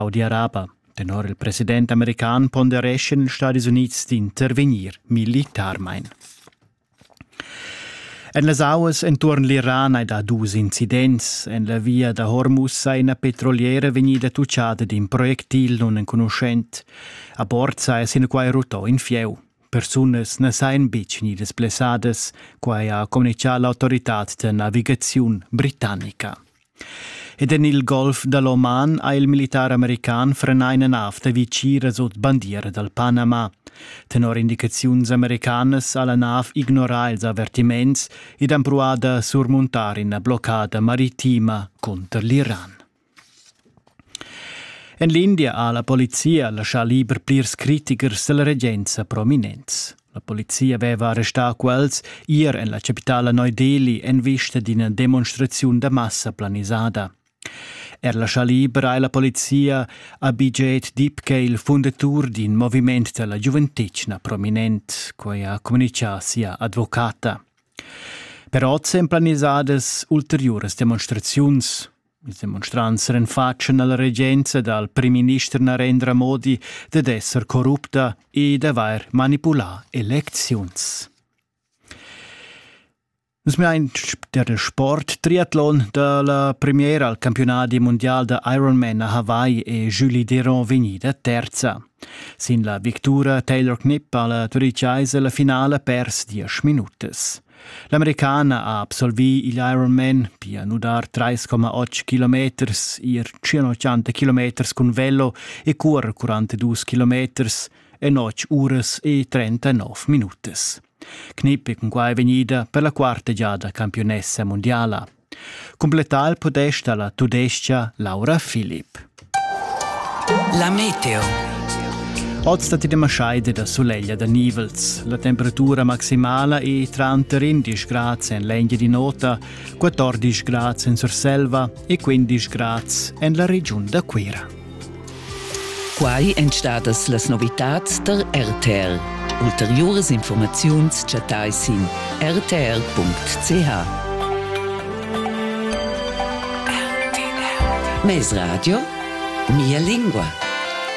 Saudi Arabia. Tenor il president american pondereschan Stadis Unids d'intervegnir militarmein. En las auas enturn l'Iran hai dà dus incidents. En la via da Hormuz ha ina petroliera vegnida tuccada d'in projectil nunenconuschent. A bord saja sinaquai rutto in fieu. Persunas na sajan betg gnidas blessadas, quai ha communitgà l'autoritad da navigaziun britannica. Ed en il golf da l'Oman ha il militar american frenà ina nav da vitgiras ord bandiera dal Panama. Tenor indicaziuns americanas ha la nav ignorà ils avertiments ed empruà da surmuntar ina bloccada maritima cunter l'Iran. En l'India ha la polizia laschà liber plirs critichers dalla regenza prominents. La polizia veva arrestà quels ier en la chapitala Neu-Delhi en vista d'ina demonstraziun da massa planisada. Er la Chalibra e la polizia Abhijit Dipke, il fundatur d'in moviment da la giuventetgna prominent, quai ha communitgà sia advocata. Per oz èn planisadas ulteriuras demonstraziuns. Il demonstrants renfatschen alla regenza dal primminister Narendra Modi ded esser corrupta e d'avair manipulà elecziuns. Nus mein der Sport Triathlon da la premiera al campionati mondial da Ironman a Hawaii è Julie Deron vegnida terza. Sin la victura Taylor Knipp alla Turic Eise la finale pers 10 minutas. L'americana ha absolvì igl Ironman, pia nudar 3,8 kilometers, ir 180 kilometers cun velo e curer 42 kilometers en 8 uras e 39 minutas. Knip è cunquai vegnida per la quarta giada campiunessa mundiala. Cumplettar il podest alla tudescha Laura Philipp. La meteo. Oz dat ti maschaide da suleglia da nivels. La temperatura maximala è tranter 11 grad en l'enghe di nota, 14 grad en Surselva e 15 grad en la regiun da Cuira. Quai èn stadas las novitads tar RTL. Ulteriuras informaziuns chattai sin rtl.ch. Mes radio, mia lingua.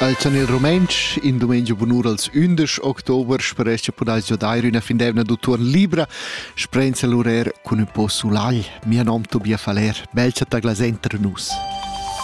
Als en il rumantsch, in dumengia bunur als 11 october, speresc podais dair üna findevna d'autor libra, sprenza l'urer cun un po sulagl. Mia nom Tobia Faler, belza ta glasenter nus.